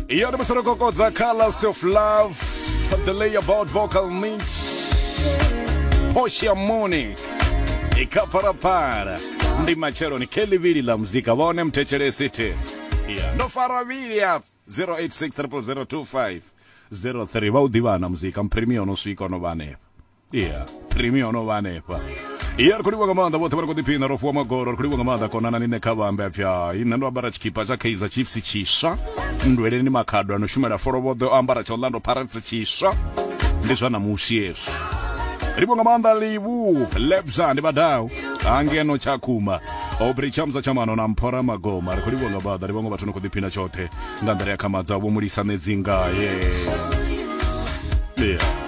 iyo ndi musi ro kokodza colors of love the layabout vocal mix portia monic ikapharapara ndi matshelo ni khe ḽivhili ḽa muzika vha one mthetshelesi thi Yeah. ndo fara vhili ya 086 003 vha u ḓivhana muzika mphirimiyo no swika no vha hanefha yeah premium ono vha hanefha iya ri khou livha nga maanḓa vhoṱhe vha ri khou ḓiphina ro fuwa magoro ri khou livha nga maanḓa konana ni nṋe kha vhambe apfi hai nṋe ndo ambara tshikhipa tsha kaizer chiefs tshiswa nndweleni makhado ano shumela folovhoḓe o ambara tsha orlando pirates tshiswa ndi zwa namusi hezwo livho nga maanḓa livu lebza ndi vhadau angeno tshakhuma obri chamza tshamano na mphora magoma ri khou livho nga maanḓa ndi vhaṅwe vhathu no khou ḓiphina tshoṱhe nga nḓila ya khamadza vho mulisa ṋedzi ngaye yeah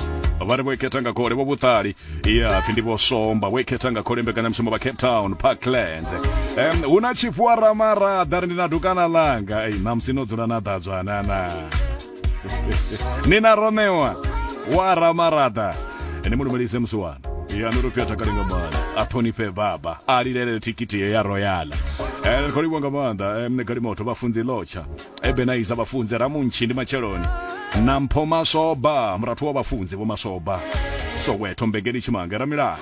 vha ri vho ikhetha nga khole vho vhuṱali ya pfi ndi vho somba vho ikhetha nga khole mbekanyamushumo vha cape town parklands um, hu na chief wa ramarada ri ndi na dukana langa ei namusi no dzula na ḓadzwanana ni na ronewa wa ramarada ene mu lumelise musiwana ya no topfi a takale nga maanḓa a ṱhonifhe baba a lilele thikhithi ye ya royala Eh, khou livhuwa nga maanḓa mne galimoto vhafunzi lotsha ebenaiza vhafunzi ramuntshi ndi matsheloni na mpho mashoba murathu wa vhafunzi vho mashoba soweto mbengeni tshimange ramilani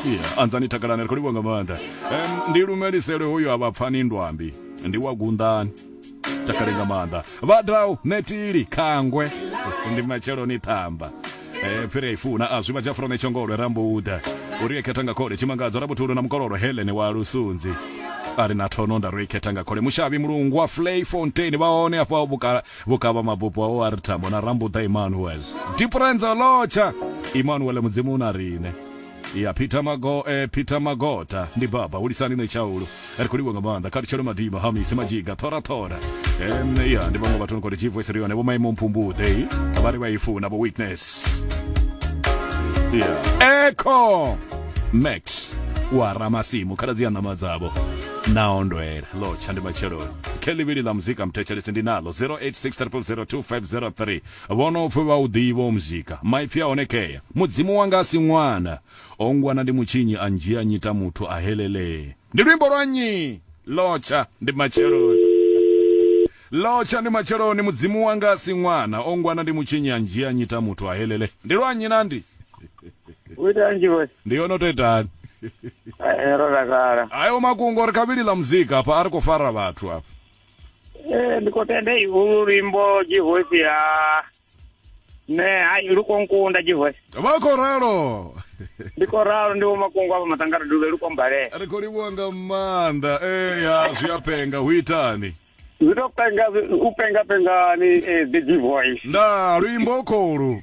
Yeah, anzani takalani ri khou livhuwa nga maanḓa Em, ndi lumelisele hoyo a vhapfani ndwambi ndi wa gunḓani takale nga maanḓa vhadau netili khangwe ndi matsheloni ṱhamba eh phiri i funa a zwiba jafro ne tshongolwe rambuda uri ekhetha nga khole tshimangadzo rabuthulo na mukololo Helen wa lusunzi ari na thono nda roi khetha nga khole mushavi mulungu wa Flay Fontaine vha hone afha vhukala vhukavha mabupo wa o ari thambo na rambuda Emmanuel Diprenzo Locha Emmanuel mudzimu na rine ya peter mago eh, peter magota ndi baba ulisani ne chaulo ri khou livha nga maanḓa kha lutshelo madima hamise majiga thorathora em ya ndi vhaṅwe vhathu ni khou ri chivoice ri yone vho maimo mphumbuḓe vha ri vha i funa vho witness yeah. eco max wa ramasimu khaladzi ya ṋama dzavho na ondwela lotsha ndi matsheloni khe ḽivhili ḽa muzika mthetshelesi ndi nalo 0863002503 Vho no pfi vha u ḓivha u muzika, maipfi a hone kea. Mudzimu wanga a si ṅwana, o ngwana ndi mutshinyi a ndzhia a nnyita muthu, ahelelee. Ndi luimbo lwa nnyi? Lotsha ndi matsheloni. Lotsha ndi matsheloni, Mudzimu wanga a si ṅwana, o ngwana ndi mutshinyi a ndzhia a nnyita muthu, ahelelee. Ndi lwa nnyi na ndi? Wo ita nnzhi vhoy. Ndi yo no to itani? Hai ro takala. Ayo makungo ri kha vhili ḽa muzika hafha a ri kho fara vhathu hafha. ee eh, ndi khou tenda ihulu luimbo jihosi ya ne hai lu khou nkunda jihosi vha khou ralo ndi khou ralo ndi vhomakungu avha matangara duvhe lu khou mbalela ri khou livhuwa nga maanḓa ee ya zwi a penga hu itani zwi to penga u penga pengani eh, the jivoice nda luimbo kholu